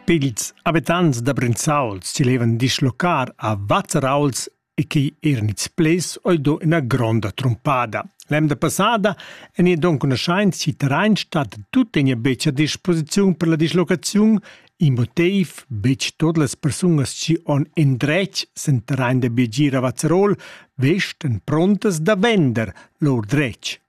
Pigls abitants da Brinzauls zilevan dislocar a Vazzerauls e chi eran its pleds oi do ina gronda trumpada. L'emda passada en ia donc unaschains chi terrain stat tuttegna betg a disposiziun per la dislocaziun, i motiv betg tot las persungas chi on indretg sen terrain da biagir a Vazzerol vesten prontas da vender lor dretg.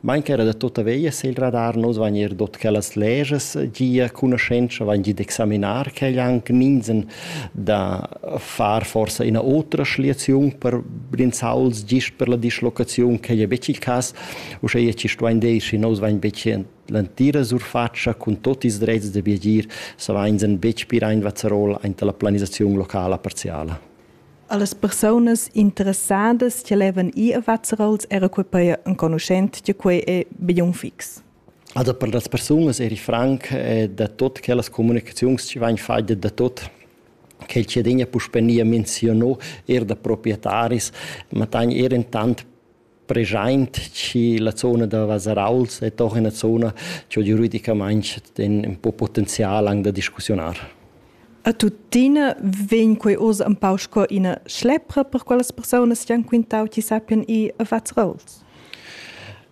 Main ch'eira da tuotta veglia se il radar nu's vain eir dot quellas lejas gia cugnuschentscha, vain gi d'examinar quel anc ninzen, da far forsa üna otra schliaziun per brinzauls gist per la dislocaziun, quai es betg il cas. Uschea chi stuain dir, schi nous vain be l'entira surfatscha cun tuot ils drets da biagir, savainsen betg pir aint Vazerol aint da la planisaziun locala parziala. Allas persunas interessadas che levan ir a Vazzarols era quei pei enconuschent che quei è biun fix. Also per las persunas eri franc e da tot quellas comunicaziuns che vain fatte da tot quel ciadin puspè nia menzionò er da proprietaris, ma tan er intant preschaint chi la zona da Vasarauls è doch üna zona chi ho giuridicamaing ün po potenzial anche da discussiunar. A tuttina vegn quei oz un pau sco ina schlepra per quellas persunas che han quintau chi sappian ir a Vazzarolz?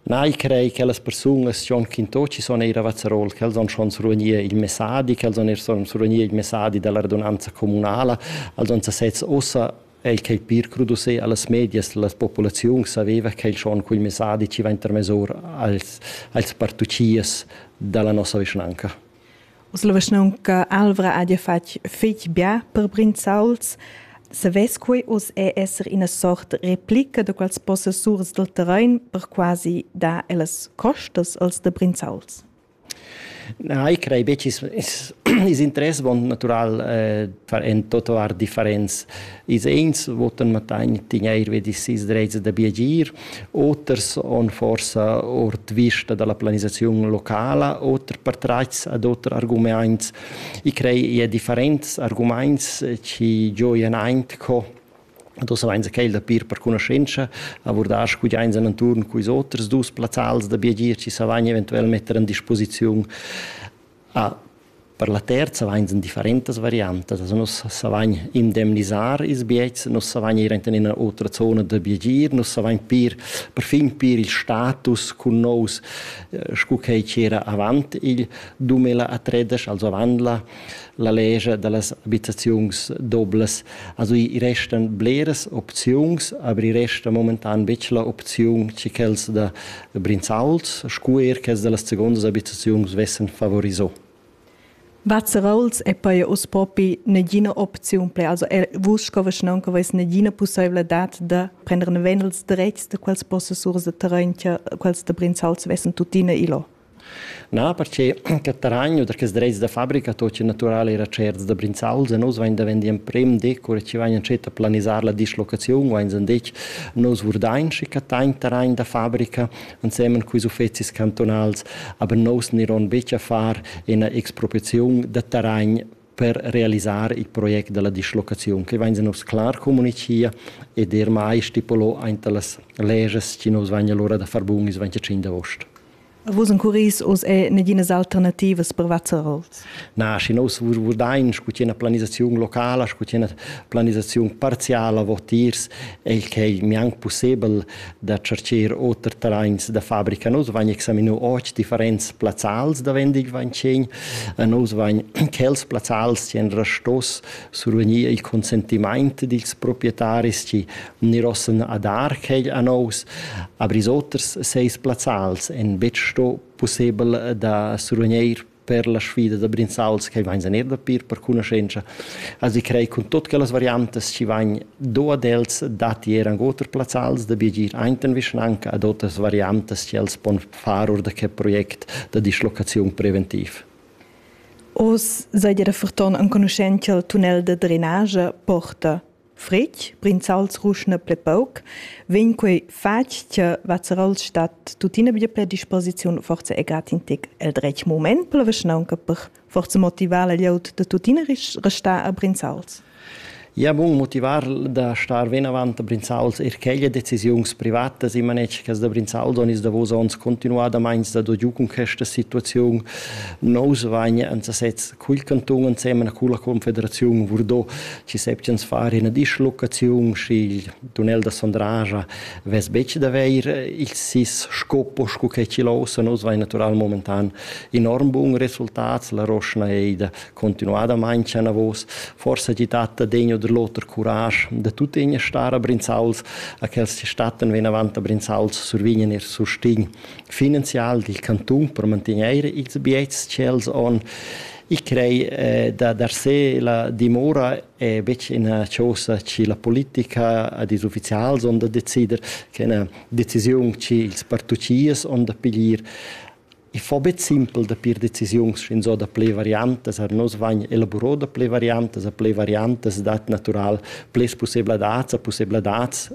Na, io crei che las persunas che han quintau ci son eir a Vazzarol, quels han schon survegnier il messadi, quels han eir son survegnier il messadi dalla radunanza comunala, els han sesezs ossa El ch'ei pir crudus ei allas medias dallas populaziuns saveva ch'el schon quei messadi ci va intermesur als, als partucias dalla nossa vischnanca. Us la vischnaunca Alvra ha ja fatg fetg bia per Brinzauls. Savess quei us è esser ina sort replica da quels possessurs del terrain per quasi dar ellas costas als de Brinzauls? Na, io crei be chi's es interess bond natural en tot far differents. Ils uns votan mattagn tegnair vi sis drizs da biagir, oters han forsa ord vista da la planisaziun locala oter patratgs ad oter argumaints. I crei eir differents argumaints chi giojan aint co Da sainza quel da pir per cunascenza a vurdar scu giains an anturn cuis oters dus plazzals da biagier chi savagn eventuel metter an disposiziun a per la terza vains in differentas variantas. Also nus savagn indemnisar ils biets, nus savagn ir enten ina otra zona da biagier, nus savagn pir perfin pir il status cun nous scu quai c'era avant il 2013, also avant la la legia da las abitaziuns doblas. Also i restan bleras opziuns, aber i resta momentan betg la opziun che quels da Brinzals sco er quels da las segondas abitaziuns vessen favoriso. Vazerauls è poi us propi negina opziun ple, also er vus scovesch non che veis negina possibilità da prendere venels dreits da quels possessurs de terrain che quels de Brinzals vessen tuttina ilo. Na, perche che taragn u da quels drets da fabrica tochen natural era certs da Brinzauls e nus vain davendi emprem decur e chi vain entschet a planisar la dislocaziun, vain san detg, nus vurdain schi cattain taragn da fabrica ensemen culs uffezis cantunals, aber nus n'eron betg a far ina expropriaziun da taragn per realisar il project dalla dislocaziun, che vain san nus clar comunichia ed er mai stipulò aint las leges chi nus vain allura da far bun ils 25 d'aost. Vus encuris oz è neginas alternativas per Vazerholz? Na, schi nous vurdain scu tia planisaziun locala, scu tia planisaziun parziala votiers, è il che è mianc pussebel da cercher oter terrains da fabrica. Nous vain examino och differents plazzals da vendig vain tschegn, nous vain quels plazzals tien rastos survenir il consentimaint dils proprietaris, chi Nir ossen a dar quegl a nous, aber ils oters seis plazzals en betg sto pussebel da survegneir per la sfida da Brinzals che vain san er da pir per cunoschenza. Also ich crei cun tot quellas variantas chi vain do ad els datti er anc oter plazzals da biegir ainten vischnanca ad oters variantas chi els pon far or da che project da dislocaziun preventiv. Oz seid ihr ferton enconuschent il tunnel da drenage porta. fritg, Prinzals ruschna ple pauc, vegn quei fatg che Vazzerol stat tuttina bia ple disposiziun forza e gratintic el dretg moment, plavesna anche per forza motivar el aut de tuttina restar a Prinzals. Ja, bun motivar da star ven avant a Prinzals er quelle decisiuns privatas in manetsch che da Prinzal don is davos ons continuadamente da do giu con questa situazione nous vagn an sasez cul cantun ensemen culla confederaziun Vurdò ci septians far ina dislocaziun sch'il tunnel da Sondraja vess betg da veir il sis scopo sco che ci lausa nus vai natural momentan enorm bun resultats la roschna ei da continuadament chana vos forse ci tatta degno der loter courage da tutte in stara brinzauls a quels ci statten ven avant a brinzauls survignen er sustin finanzial dil cantun per mantener ils biets tschels on. Ich crei eh, da dar se la dimora è betg una cosa che la politica ad is ufficials on da decider, che è una decisione che ils particiers on da piglier. I fa bet simpel da pir decisiuns sch'ins ho da ple variantas, ar nos vagn elaborò da ple variantas, a ple variantas dat natural ples pussebladats, a pussebladats